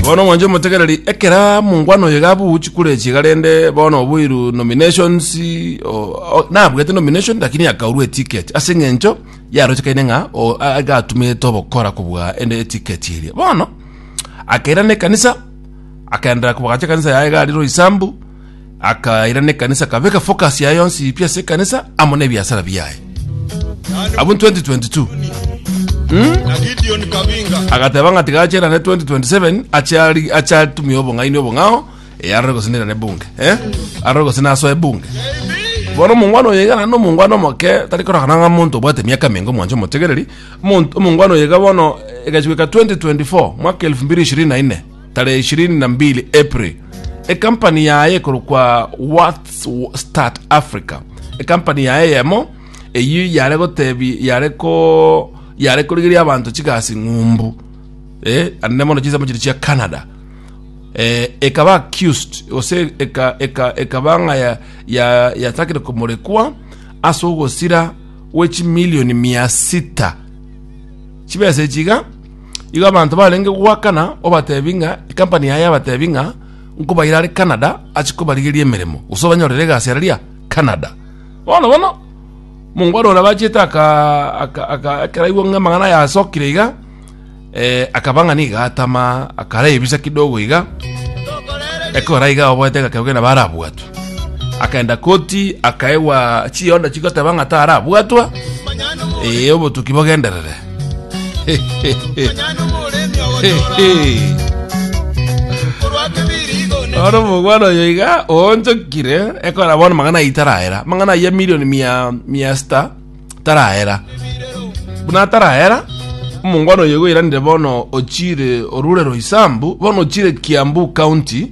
Bono mwanche omotegereri ekera mongwana oyo iga abuchi kure echiga rende bono oboiru nominations o, o, nabwete nomination lakini akaurwa eticket ase eng'encho yarochekaine ng'a o- a- aiga atumete obokora kobua ende eticket eria bono akairana ekanisa akaenderera kobagacha ekanisa yaye iga ari roisambu akairana ekanisa kabeka focus yaye yonsi pi ase ekanisa amo nebiasara biaye abo 2022 na Gideon Kabinga agateba ng'a tiga acherane 2027 achari achatumia obong'aini obong'ao eh, arore gose nirane bunge eh? arore gose nasoe bunge bono omongwana oyo igana nomongwana omoke tari korogana ng'a monto obwate miaka mingo mwancho omotegereri Omonto- omongwana oyo iga bono egachweka 2024 mwaka 2024 tarehe ishirini na mbili April, ekampani yaye ekorokwa What's Start Africa, ekampani yaye yemo eyio yare gotebi yare ko yare korigeria abanto chigasi ng'umbu eh, ande mono chinsemo chiri chia Canada eh, ekaba accused gose eka, eka, ekaba ng'a ya- ya- yatakire komorekwa ase ogosira gwe chimilioni mia sita chibesa echiga Igo abanto barenge goakana obatebi ng'a ekampani yaye yabatebi ng'a nkobaira are Canada ache kobarigeria emeremo gose obanyorere egasi araria Canada. Bono bono omongwana oria bachete aka- aka- aka- ekero aigwa ng'a amang'ana aya asokire iga eh, akaba ng'a nigo atama akara ebisa kidogo iga ekora iga oboete egakera kogenda barabwatwe akaenda koti akaegwa chionda chigoteba ng'a tarabwatwa ee obotuki bogenderere ore omogwana oyo iga oonchokire ekora bono mang'ana ayi taraera mang'ana ayi ya milioni mia mia sita taraera buna ataraera omongwana oyo igo oiranire bono ochire orure roisambu bono ochire kiambu county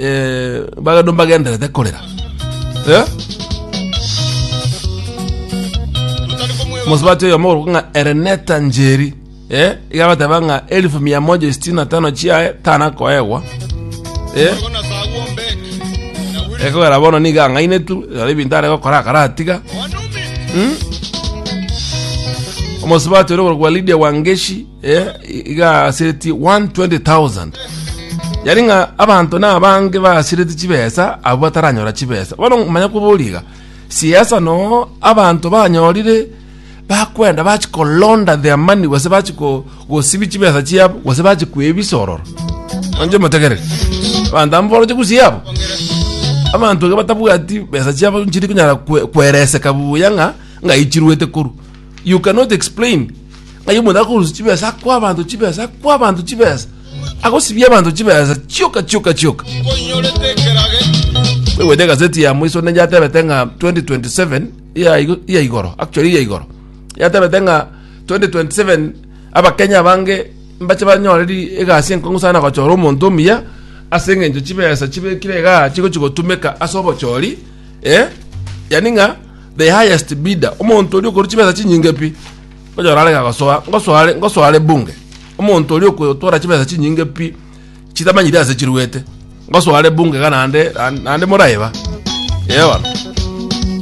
Eh, bagendo mbagenderete korera Eh? mosubati oyo mogoro ng'a ereneta njeri eh? igabateba ng'a elfu mia moja sitini na tano chiaye tana koegwa eh? ekogera bono niga ang'aine tu ari ebinto are gokora akaratiga omosubati ore korwa lidia wangeshi eh, igasiretie 120,000 yari ng'a abanto na abange basireti chibesa abo bataranyora chibesa bono manya koboriga siasa no abanto banyorire bakwenda bachikolonda their money gose bachiko gosibi chibesa chiabo gose bachikwebisororo anje motegerere abanto amo boroche gusiabo abanto iga batabwati besa chiabo nchiri kunyara kwe- kwereseka buya ng'a ng'a ichiruete koru you cannot explain ng'ai omonto akorusia chibesa akwa abanto chibesa akwa abanto chibesa agosibia abanto chibesa chioka chioka chioka kwegwete gazeti ya mwiso ne yatebete ng'a 2027 iya igo- iya igoro actually iya igoro yatebete ng'a 2027 abakenya abange mbache banyoreri egasi enkong'u sana gochora omonto omuya ase eng'encho chibesa chibekire igaa chigochi gotumeka ase obochori eh yani ng'a the highest bidder omonto oria okoru chibesa chinyinge pi onyora arege agosoa ngosoa are ngosoa are bunge omonto oria okotwara chibesa chinyinge pi chitamanyire ase chiruete ngosoa are bunge iga nande nande moraiba ewana